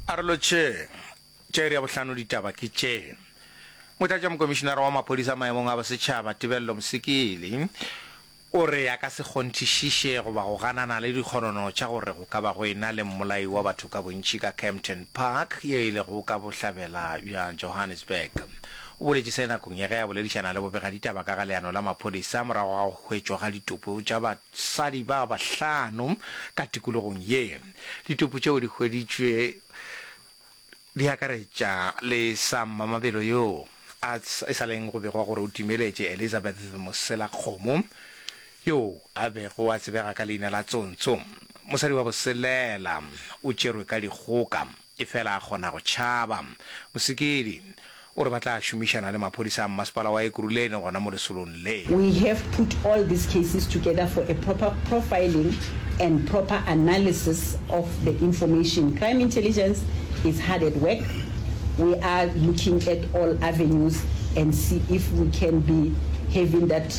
A re lotšheng, tša iri ya bohlano ditaba ke tše. Motlatšamokomišinara wa maphodisa maemong a bosetšhaba Tebello Mosekele o re a ka se kgonthišiše goba go ganana le dikgonono tša gore go ka ba go ena le mmolai wa batho ka bontši ka Kempton Park ye e lego ka bohlabela bja Johannesburg. O boletše se nakong ya ge a boledišana le bobegaditaba ka ga leano la maphodisa morago ga go hwetšwa ga ditopo tša Basadi ba bahlano ka tikologong ye. Ditopo tšeo di hweditšwe di akaretša le sa mmamabelo yoo a e sa leng go begwa gore o timeletše Elizabeth Moselakgomo, yoo a bego a tsebega ka leina la Tsontso. Mosadi wa boselela o tšerwe ka dikgoka. Efela a kgona go tšhaba. Mosekedi o re ba tla šomišana le maphodisa a mmasepala wa Ekurhuleni gona mo lesolong le. We have put all these cases together for a proper profiling and proper analysis of the information. Crime Intelligence is hard at work. We are looking at all avenues and see if we can be having that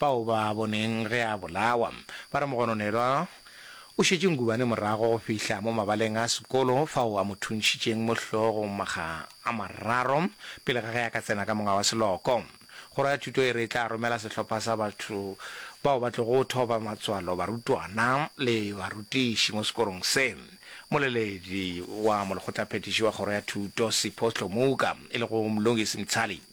Bao ba a boneng ge a bolawa ba re Mogononelwa o šetše Ngubane morago go fihla mo mabaleng a sekolo fao a mo thuntšhitšeng mo hlogong makga a mararo pele ga ge a ka tsena ka monga wa seloko. Kgoro ya Thuto e re e tla romela sehlopha sa batho bao ba tlogo thoba matswalo barutwana le barutiši mo sekorong se moleledi wa molekgotlaphethiši wa Kgoro ya Thuto Sipho Hlomuka e lego Mlungisi Mtshali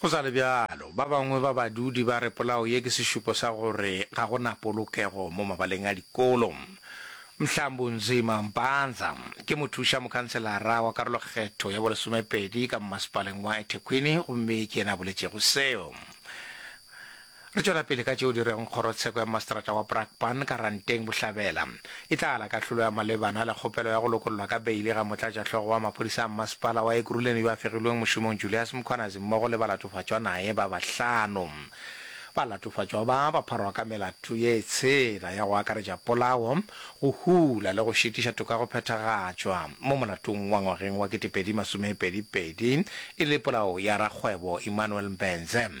Go sa le bjalo, ba bangwe ba badudi ba re polao ye ke sešupo sa gore ga go na polokego mo mabaleng a dikolo. Mhlambu Nzima Mpanza ke mothuša mokhanselara wa karolokgetho ya bolesomepedi ka mmasepaleng wa eThekwini gomme ke yena a boletšego seo. Re tšwela pele ka tšeo di reng Kgorotsheko ya Maseterata wa Brakpan ka Ranteng Bohlabela e tla ala kahlolo ya malebana le kgopelo ya go lokollwa ka beili ga Motlatšahlogo wa Maphodisa a Mmasepala wa Ekurhuleni yo a fegilweng mošomong Julias Mkhwanazi mmogo le balatofatšwa naye ba bahlano. Balatofatšwa ba ba pharwa ka melato ye tshela ya go akaretša polao, go hula le go šitiša toka go phethagatšwa mo molatong wa ngwageng wa kete pedi masomepedi pedi e le polao ya rakgwebo Emmanuel Mbenze.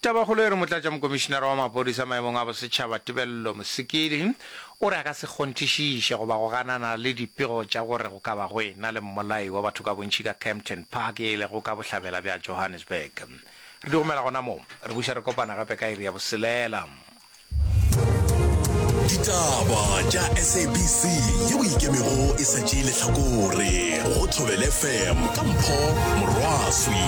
Tabakgolo e re Motlatšamokomišinara wa Maphodisa maemong a Bosetšhaba Tebello Mosekedi o re a ka se kgonthišiše goba go ganana le dipego tša gore go ka ba go e-na le mmolai wa batho ka bontši ka Kempton Park e lego ka bohlabela bja Johannesburg. Re di romela gona mo. Re buša re kopana gape ka iri ya boselela. Ditaba tša SABC ye o ikemego e sa tšee lehlakore go Thobel FM ka Mpho Morwaswi.